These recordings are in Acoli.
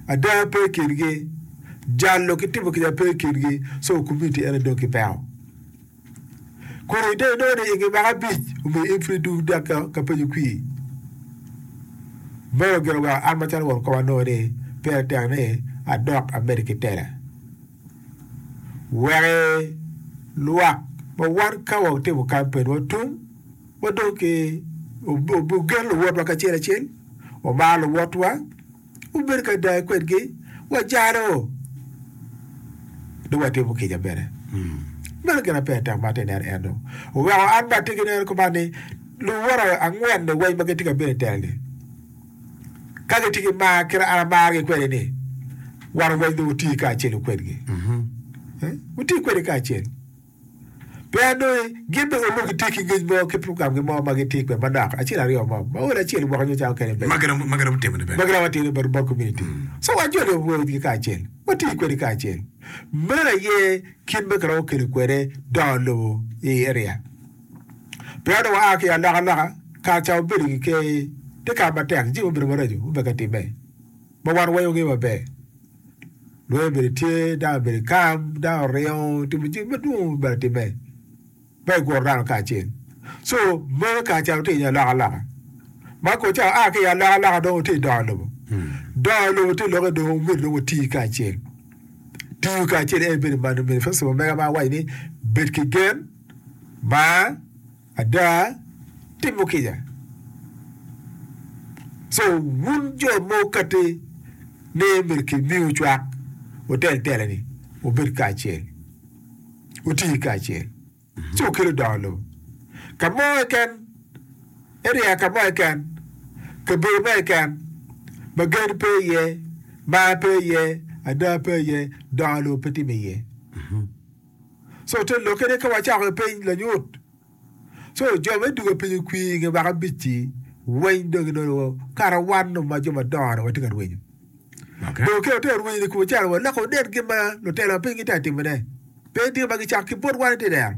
ada pe i kingi, jalo ki timo kica pe i kingi, so komiti ene dong kipeko. Kun idong inongo ni i nge mwaka abic omiyo in pud idwogo dok ka, ka penyo kwir. Meno ogeno weko an macalo won koma anongo ni pire tek ni adok amedi ki tela. Wek lwak ma wan ka watimo kampen watum Wa dong ki ogen luwotwa kacel acel, wamar luwotwa, wabedo ki ada kwedgi, wajalo, dong watimo kica bene. Meno gin ma peya tek ma atye ka neno eno. Oweko an bene atye ki neno kuman ni luwote angwen-ni weng ma gitye ka bino i tela-ni, ka gitye ki mar kit ma an amargi kwede-ni, wan weng dong wutiyo kacelu kwedgi. Wutiyo kwedgi kacel. Pien nongo gin bene onongo gitye ki ngec mo ki pukamgi mo ma gitye kwede manok acel aryo mo ma odi acel gwoko nyo cawa kene ma giromo timo ni bene bot komuniti. So wan joni wawoyo wigi kacel, watiyo kwedgi kacel. Meno aye kit ma kiromo kelo kwede dongo lobo i area. Pien onongo waa ki i alokaloka, kare ca wabedo ki ker, tye kare matek jami obedo maraco, wubeka timme. ma wan wawenyogi maber. Lweny obedi tye, dano obedi kam, dano oringo otimo jami madwong ma myero etimme ma eguro dano kacel. Co meno kare ca wutye i alokaloka ma kong ca wua ki i alokaloka dong wutye i dongo lobo. Dongo lobo tye lokke dong myero dong wuti kacel. Tiyo kacel en bedo manonge. Manifesto ma mega ma awaco ni bed ki gen, mar. Ada, timo kica. So, wun jo ma wukati ni myero kimiu cwak, wutel telani, wubed kacel, wuti kacel, ci wukelu dongo lobo ka mo keken, eriya ka mo keken, kabedo mo keken ma gen pe iye, mar pe iye, ada pe iye, dongo lobo pe timo iye. so te lokke ni ka wacako i piny lanyut so jo me duga piny okwi i nge waka abic-ci weny dong inongo kara wan nongo ma jo madongo dong watye ka rwenyo okay. dong keo te rwenyo ni kubo calo wa loko wunen gin ma lutela ma piny gitye ka timone pe tye ma gicako ki bot wan ite dero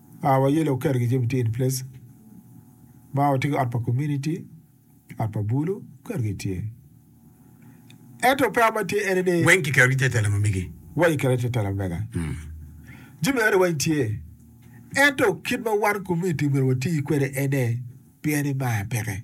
Aa wa yelo oketo gi jami tye in place ma watye ki ot pa community ot pa bulu oketo gi tye ento peya ma tye ene ni weng kiketo gi te tela ma mege wa kiketo te tela mega jami ene weng tye ento kit ma wan community myero wati kwede ene pien ni mar peke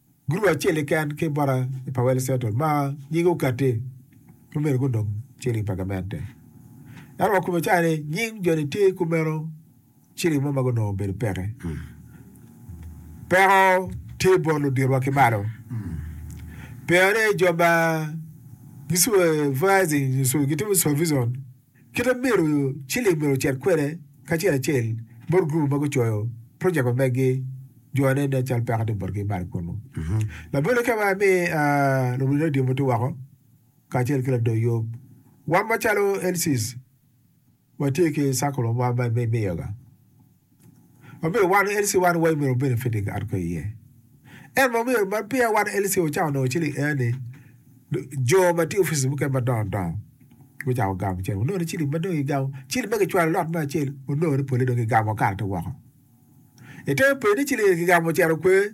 Gurup acel keken ki bota i Powell Central ma nyinge okatti pe omyero gunong ciling pa gamente. Ento wa kome cani nying jo ni tye kumeno ciling mo ma gunongo obedo peke. Peko tye bot luditwa ki malo. Pien ni jo ma gicubo advertising nyo gitimo supervision Kite ma myero ciling myero ocit kwede kacel acel bot gurup ma gucoyo projek ma meggi, jo ma nen-ni calo peko tye botgi malo kunnu. Labole ka ma imi luwil redio muti woko kacel ki lador yub, wan macalo LCs watye ki circle wa ma imiyoga. Obedo wan LC wan way myero obed fitting arco iye. En ma myero man peya wan LC ocako nongo ciling air ni jo ma tye offices mukene ma dongo dongo gucako gamo cen onongo ni ciling ma dong igamo ciling ma kicwalo lot me acel onongo ni pole dong igamo okato woko. Itemo penyo ni ciling eni kigamo ocito kwer